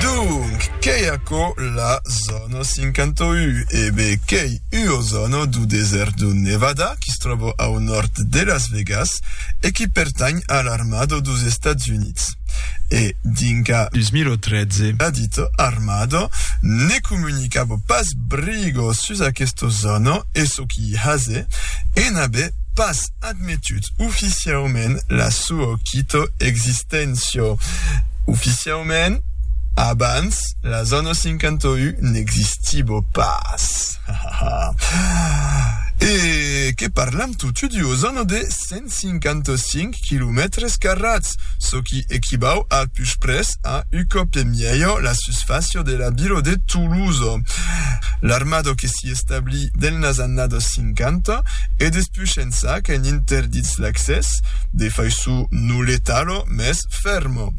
Donc, qu'ei aquò la zòna 51? E be, qu'ei ua zòna dau desèrt dau Nevada qui se tròba au nòrd de Las Vegas e qui pertanh a l'armada daus Estats Units. E dinca. 2013. La dita armada ne comunicava pas briga sus aquesta zòna e çò qui i hase e n'avè pas. Admetut oficiaument la sua quito existéncia. Oficiaument, abans las annos 51 n'existibo pas. E que parlam totu duos annos de 155 quilomètres carrats, çò qui equivau a puspres a u còp e mièlhor la susfàcia de la vila de Toulouse. L'armada que i establir delnas annadas 50 e despús ençà qu'en interdits l'accès, de faiço no letalo, mès fermo.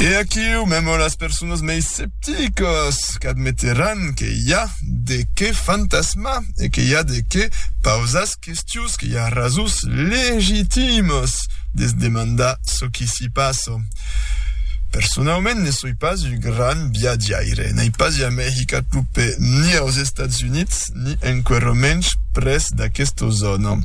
E aquiu, memo las personas mei scepticas qu'admeteràn que i a de qué fantasmar e que i a de qué pausas Questions que i a rasons legitimas de se demandar çò qui s'i passa. Personaument ne soi pas un grand viatjaire, n'ai pas jamai hicat lo pè ni aus Estats Units ni enquero mensh pres d'aquesta zòna.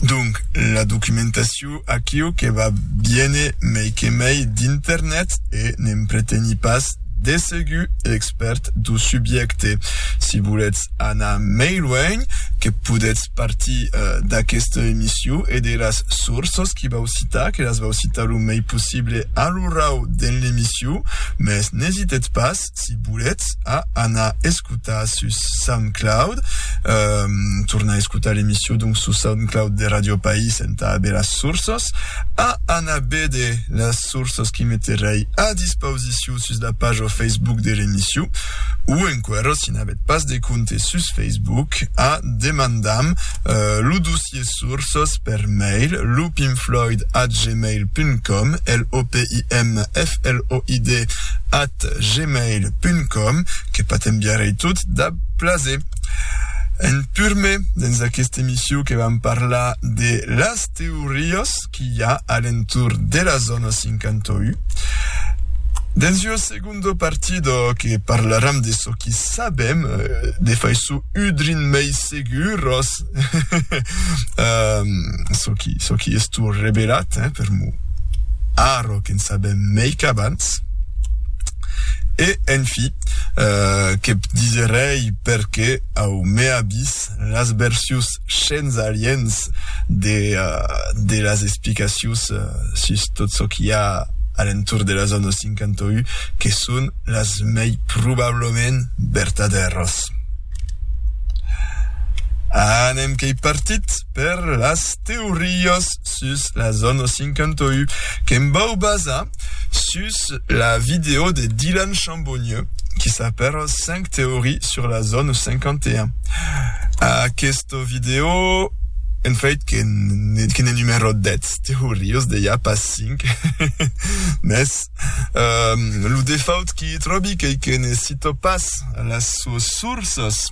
Donc, la documentacion. Aquiu, aquiu que va viene mei que mei d'internet e ne'm preteni pas de segur expèrt do subjècte. Si volètz anar mei luènh, que podètz partir d'aquesta emission e de las sources qui vau citar, que las vau citar lo mei possible a l'orau dens l'emission, mès n'esitètz pas, si volètz a anar escotar sus Soundcloud ehm tornar escotar l'emission donc sus Soundcloud de Radio País entà aver las sources a anar béder las sources qui meterèi a dispausicion sus la paja Facebook de l'emission o enquera si n'avètz pas de compte sus Facebook a demandam lo dossier Quies sources per mail, loopinfloyd at gmail punt com, L-O-P-I-M-F-L-O-I-D at gmail punt com, que pa t'enviarei tot dab plaser. En purme, dens aquesta emission que vam parlar de las teorias qu'i a a l'entorn de la zona 51, dens ua segonda, Segundo partido que parlaram de çò qui sabem, de faiço udrin mei seguros, çò qui çò qui es tu revelat, eh, per mo arro que'n sabem mei qu'abans. E en fi, que p diserèi perque au mea vis las versius shens aliens de las explicacions sus tot çò qu'i a a l'entorn de la zòna 51, que son las mei probablament vertadèras. Anem qu'ei partit per las teorias! sus la zòna 51 que'm vau basar sus la vidèo de Dylan Chambonieux qui s'apèra 5 teories sur la zòna 51. Aquesta vidèo en fait que que ne numero 10 teorias de ja pas 5 mes um, lo defaut qui tròbi qu'ei que ne cito pas las suas sourças